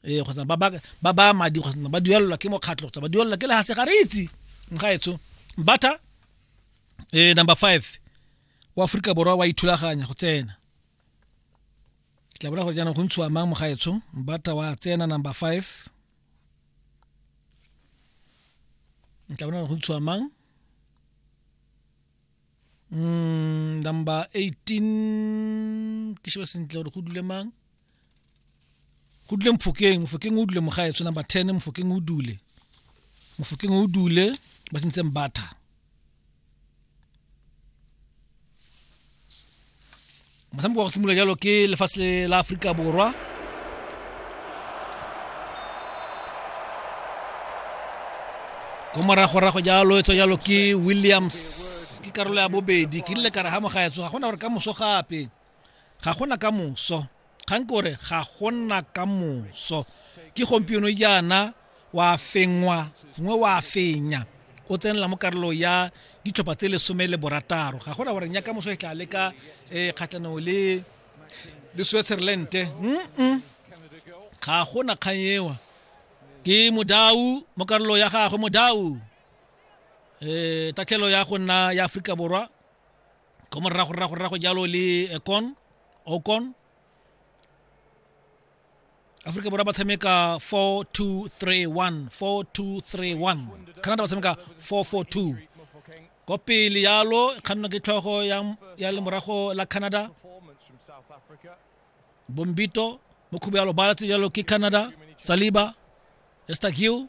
ee kgotsa ba baya madi kgotsa ba duelelwa ke mokgatlho kgotsa ba duelelwa ke lehase ga re itse nkaetsho mbatha eh number five wa aforika borwa wa ithulaganya go tsena ke tla bona gore jaanong go ntshiwa mang mogaetsho mbatha wa tsena number five ke tla bona gore go ntshiwa mang mm, number 18 ke sheba sentle gore go dule mang go dule mfokeng mfokeng o dule mogaetsho number 10 mfokeng o dule mfokeng o dule ba sentseng batha motshameko wa go simolola jalo ke lefatshe la aforika borwa ko moragorago jalo e tswa jalo ke williams ke karolo ya bobedi ke rile kare ga mo ga etso ga gona gore ka moso gape ga gona ka moso kgang ke gore ga go nna ka moso ke gompieno jaana wa fengwa gongwe wa fenya o tsenela mo karolo ya ditlhopha tse lesome le borataro ga gona goreng ya ka moso e tla le ka um kgatlhanong le le switzerlande ga gona kgang ewa ke modau mo karolo ya gagwe modau um tatlhelo ya go nna ya aforika borwa ko morago rrago rrago jalo le eh, con ocon aforika borwa ba tshameka 4231 4231 canada ba tshameka 442 ko pele yalo kganno ke tlhogo ya, ya lemorago la canada bombito mo khubo ya lobala tse jalo ke canada saliba estagiu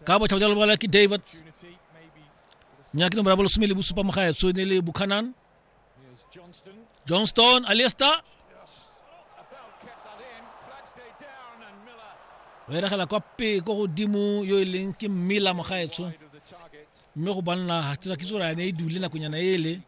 ka botlhabo jalo lobala ke david nyaki nomoro ya bolesome le bosupa mo gaetsho ne le buchanan johnston aliesta o eregela kwa pe ko godimo yo e leng ke mmela mo gaetsho mme go banna ga tsa kitso gore a ne e dule nakonyana ele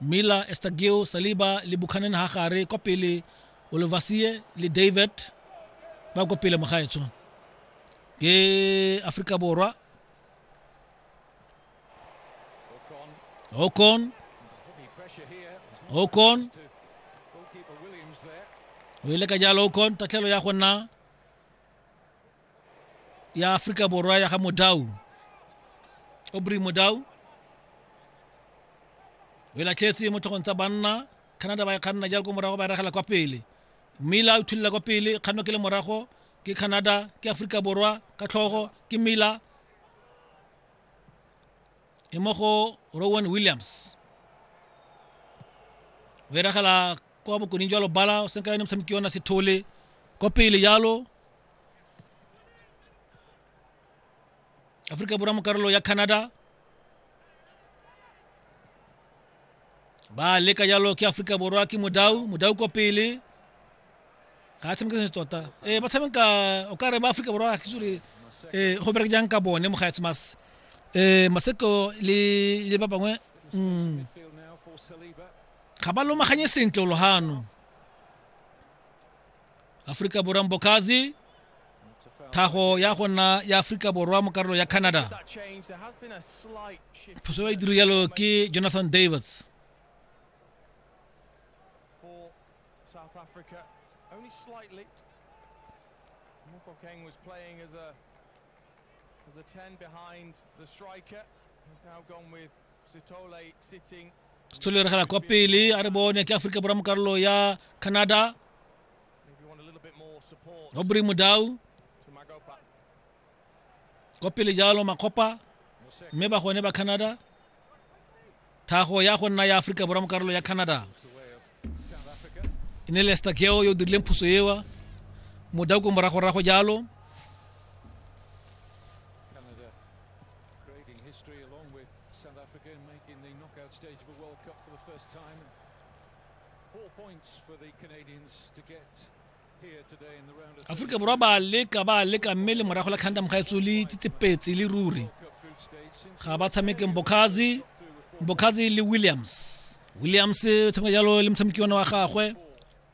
miller estagio saliba le bukhanen ha gare kwa pele olovasie le david ba kwa pele mogaetsho ke aforika borwa okon okon o ile ka jalo okon tatlhelo ya go nna ya aforika borwa ya ga modau obry modau o e latlhetse mo tlhogong tsa banna canada ba e kganna jalo ko morago ba e ragela kwa pele mmila o thulela kwa pele kganno ke le morago ke canada ke aforika borwa ka tlhogo ke mmila e mo go rowan williams o e ragela kwa bokoning jwa lobala o senka yone motshameki yona sethole kwa pele jalo aforika borwa mo karolo ya canada ba leka jalo ke aforika borwa ke modau modau kwa pele ga a tshameka se tota ee ba tshameka o ka re ba aforika borwa ga sure ee go bereke jang ka bone mogaetse mas ee maseko le le ba bangwe mm. ga ba lomaganye sentle o logano aforika borwa mbokazi tlhago ya go nna ya aforika borwa mo karolo ya canada phoso ya diro yalo ke jonathan davids Mofokeng was playing as a as a 10 behind the striker. Now gone with setshole re gela kwa pele a re bone ke aforika borwa mo karolo ya canada robry modau kwa pele jalo makgopa mme ba gone ba canada thago ya go nna ya aforika borwa mo karolo ya canada e ne lester keo yo o dirileng phuso ewa modau ko moragorago jalo Creating history along with South Africa and making the knockout stage of a World Cup for the first time. Four points for the Canadians to get here today in the round of aforika borwa ba leka ba leka mme le morago la khandam ga etso le tsitsepetse le ruri ga ba tshameke mbokhazi mbokhazi le williams williams o tshameka jalo le motshameki one wa gagwe